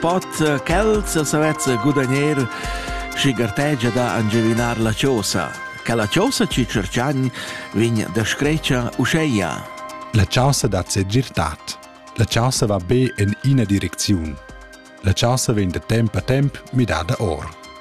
Pot eh, quels savezza gudagner schi gartegia da angivinar la chosa. Che la chosa ci cerchan vegn da screcia uscheia. La chausa dat se girtat. La chausa va be in ina direcziun. La chausa vegn da temp a temp midada or.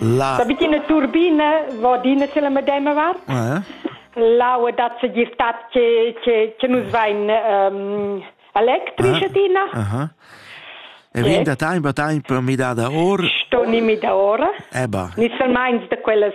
La... La vicina turbina va d'ina c'è la medema vart. Eh? L'aua dat se girtat che che che nus vain um, electrici ah, adina. Aha. E vin da time a time per midada ora? Sto ni midada ora. Eba. Ni salmains da quellas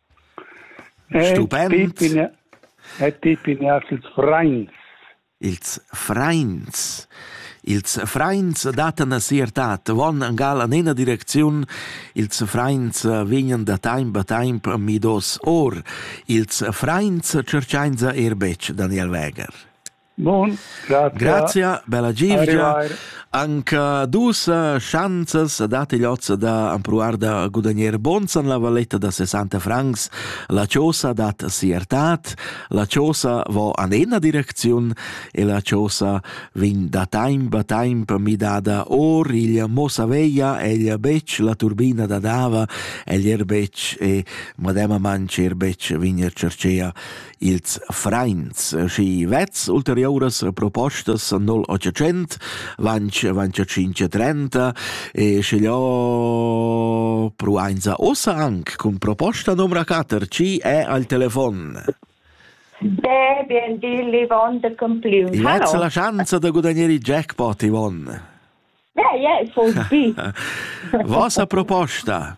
Stupend. E ti pignas ils frains. Ils frains. Ils frains dattan a sia tat, von gal an ena direcziun, ils frains vignan da taimp a taimp midos or, ils frains cerchainsa er betg Daniel Weger. Bon, grazie. Grazie, bella givgia. Anche dus eh, chanzas date l'ozza da ampruar da guadagnar bonsan la valetta da 60 francs. La chosa dat siertat, la chosa va an ena direcziun e la chosa vin da temp a temp midada or il mosa veia el bec la turbina da dava el er bec e madema mancher bec vin er cercea Ils frains schi vezs ulteriuras propostas nol otschient vanch vanch tschinch e trenta e schigliò pruainza ussa anc cun proposta numra quatter chi è al telefon. Be bien di, Yvonne de Compliu. Vezza la chanza da gudagnare il jackpot, Yvonne. Yeah, yeah, it would be. Vossa proposta?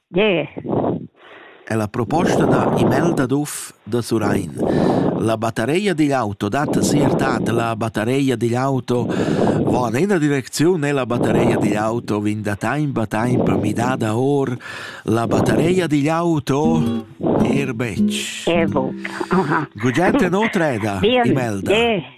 Gie. È la proposta da Imelda Duff da Surrein. La battareia digl auto dat siertad. La battareia digl auto va en ena direcziun e la battareia digl auto vin da taimp a taimp midada or. La battareia digl auto er betg. Evoca. Gugente no treda, Imelda. Gie.